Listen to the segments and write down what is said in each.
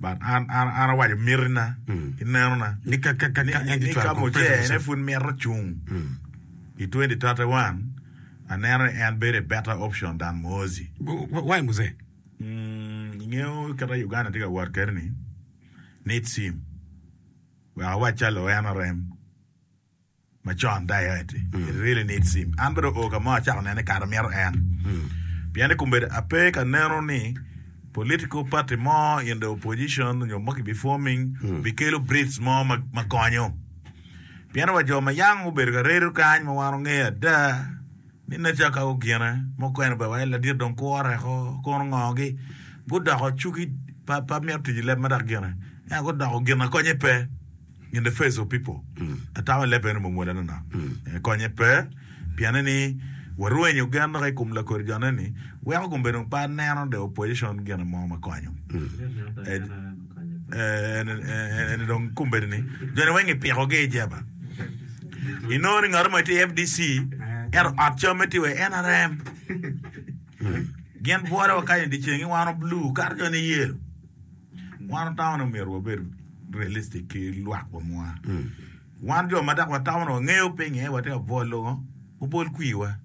but an an an awaco mitina ki neno na ni ka ka ka ni ka ni ka mujene pud mito cung i twenty thirty one aneno ni en bedo better option than muhozi why muse mm ingeyo kita Uganda tye ka wot kede ni needs him wek awac calo en arem macon da aye ati it really need sim an bene oo kamo acako nene kare amyero en pien ni kumbedo ape ka neno ni political party mo in the opposition nyo mo ki bi forming bi kelo breeds mo ma, ma konyo pien wa jo ma young obedo ka redo kany ma wan ongeyo ada ni nature ka ogine mukene ba waye ladit dong kure ko kono ngogi gudoko cugi pa pa myero tic leb ma dok gine ento gudoko ginakonye pe in the face of people ata wa leb eno mom wele nono konye pe piene ni warwenyo gen dok i kom lakor jone ni weko kom bedo pe aneno the opposition gine mo ma konyo eni dong kom bedo ni jone weng ipiko gi i jeba inongo ni ngato mo tye FDC ento ot camme tye wa NRM gin bwolo wa kany i dicengi wano blue kato jone yelo Wan otawone omyero wabed realistic ki lwak wa mwa. Wan jo ma dok watawone wangeyo pinye watye ka bwol lungo obol kwiwa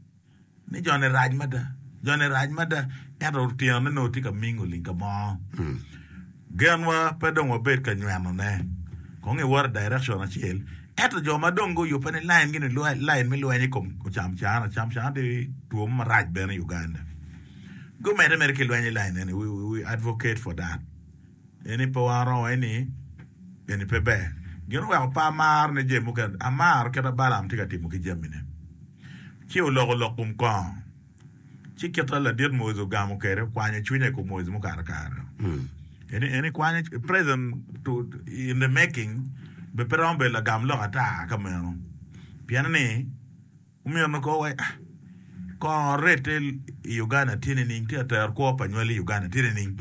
ni jone rac mada, jone rac mada ento otyeno-ni nongo tye ka ming oling ka mo. Genwa pe dong wabed ka nywenone kong i water direction acel ento jo ma dong guyubbe ni line gini lain me lweny i kom ocam cana, ocam cana tye two mo marac bene i Uganda. Gumedde mere ki lweny i lain eni, We advocate for that, pien ni pe waro wai ni eni pe ber. Gin oweko pe amaro ne jami mukene, amaro kit ma Balaam tye ka timo ki jamine. Ci oloko lok kom kongo, ci kit ma ladit Moiz ogamo kwede, okwanyo cwinya i kom Moiz mukato kare-ro. Eni, eni kwanyo, present to, in the making, be pe romo bedo lagam lok ata ka meno, pien ni, Omyero ko wa kongo rette i Uganda tye nining? Tye ka tero kwo pa nywal i Uganda tye nining?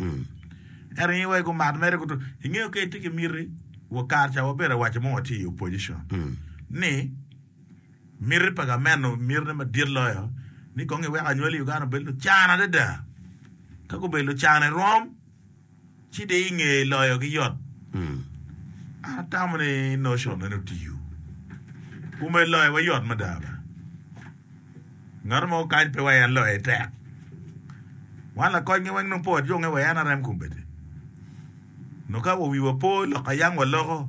Ento ngi wa i kom mat mere kutu. Ingeyo ka itye ki miti, wa kare ca wabedo awaco mo watye i opposition ni miti pa gamente mitine madit loyo ni kong iwek anywal i Uganda obed lucan adada. Ka gubedo lucan irom. Ci di inge loyo gi yot. An atamo ni notion meno tiyo. Kume loyo wa yot mada ba. Ngat mo kany pe wa en loye tek. Wan lakoc nge weng nung po adwonge wa en arem kumbete. Noka wa wiwa po loko ayang wa loko.